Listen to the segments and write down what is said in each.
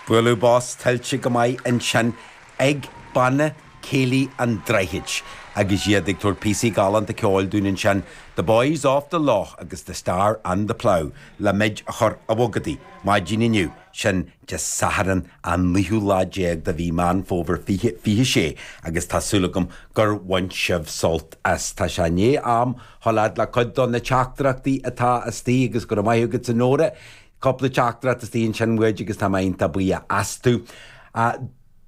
Buaileadh bos tuillte go maith ansin ag Banna Céilí an Droichid agus iad ag tabhairt píosaí galánta ceoil dúinn ansin, The Boys of the Lough agus The Star and the Plough, le muid a chur ag bogadaí, maidin inniu, sin Dé Sathairn an naoú lá déag de mhí Meán Fómhair fiche, fiche sé agus tá súil agam gur bhain sibh sult as. Tá sé i ndiaidh am Seo libh le cuid do na teachtaireachtaí atá istigh agus go rabh maith agat a Nóra. Cupla teachtaireacht istigh ansin uait agus tá muid iontach buíoch astu. A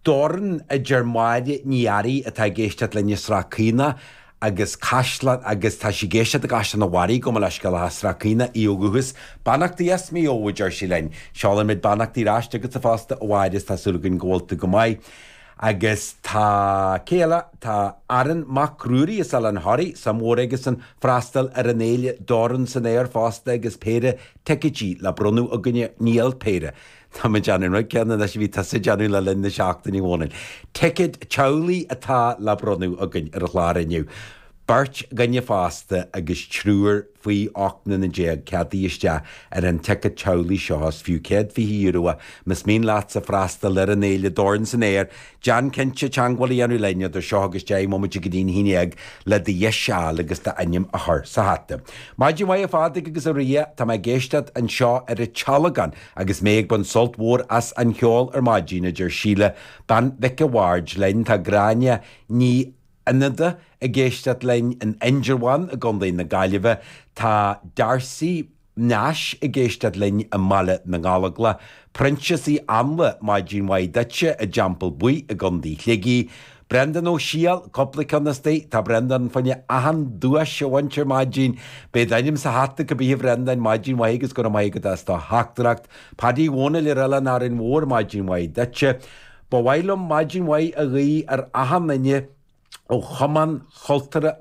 Dhorn, a deir Máire Ní Fhearraigh atá ag éisteacht linn i Srath Caonach agus tá sí ag éisteacht i gCaisleán a' Bharraigh gabh mo leithscéal as Srath Caonach í ó dhúchas. Beannachtaí as Maigh Eo a deir sí linn. Seolann muid beannachtaí ar ais chugatsa fosta a Mháire is tá súil againn go bhfuil tú go maith. Agus tá cé eile, tá Aaron Mac Ruairí as Oileán Thoraí, suim mhór aigesan freastal ar an fhéile Dorn san Aer fosta agus péire ticéadaí le bronnadh againne, níl, péire, tá mé ag déanamh an rud céanna anois a bhí tusa ag déanamh le linn na seachtaine Dhónaill. Ticéad teaghlaigh atá le bronnadh againn ar an chlár inniu, beirt dhaoine fásta agus triúr, Faoi 18 mbliana ceadaithe isteach ar an ticéad teaghlaigh seo agus is fiú €120 é. Más mian leatsa freastal ar an fhéile Dorn san Aer, déan cinnte teagmháil a dhéanamh linn idir seo agus deich mbomaite go dtí'n haon dhéag le do dheis a fháil agus d'ainm a chur sa hata. Maidin mhaith a Phaddy agus a Ria, tá mé ag éisteacht anseo ar an tSealagán agus mé ag baint sult mhór as an cheol ar maidin, a deir Síle, bean Mhic a' Bhaird linn. Tá Gráinne Ní. Fhánada ag éisteacht linn in Indreabhán i gContae na Gaillimhe, tá Darcy Nash ag éisteacht linn i mBaile na nGallóglach, Proinsias Ó hÁinle, maidin mhaith duitse, i dTeampall Buí i gContae Shligigh, Brendan Ó Siadhail, cúpla ceann istigh, tá Brendan ag faire achan duais a bhaint ar maidin, beidh d'ainm sa hata cibithe Brendan, maidin mhaith agus go raibh maith agat as do theachtaireacht, Paddy Dhónaill ar Oileán Árainn Mhór, maidin mhaith duitse. Ba mhaith liom maidin mhaith a ghuí ar achan duine ó Chumann Cultúrtha